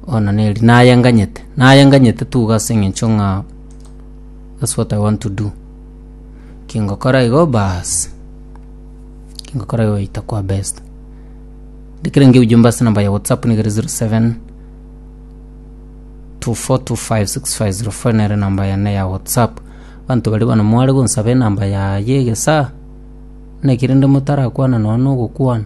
Ona neri nayenganyete, nayenganyete tuga ase eng'encho ng'a that's what I want to do. Kingokora igo baasi, kingokora igo goita kwa best. Ndikire nge ujumbe ase enamba ya WhatsApp niga ere 07 24256504 nere enamba yane ya WhatsApp. Abanto baria bono mware gonsaba enamba ya ya egesaa, naki rende motarakwana nonye na ogokwana.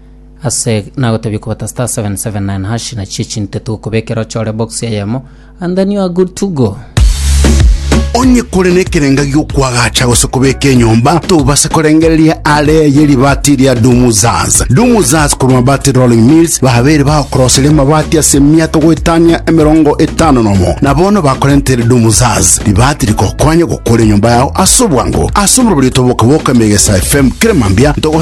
Ase nagotebia kobata star 779 hash na chie chinto tugokobekera ochore box eyemo and then you are good to go. onye kore nekerenga giokwagacha gose kobeka enyomba tobase korengereria are ye ribati ria dumuzaz dumuzaz korwa mabati rolling mills babere bagokoroseria mabati ase miato goetania emerongo etano nomo na bono bakorentere dumuzaz ribati rigokonya gokora enyomba yao ase obwango ase omorobori tobokaboka emegesa fm kere mambia togo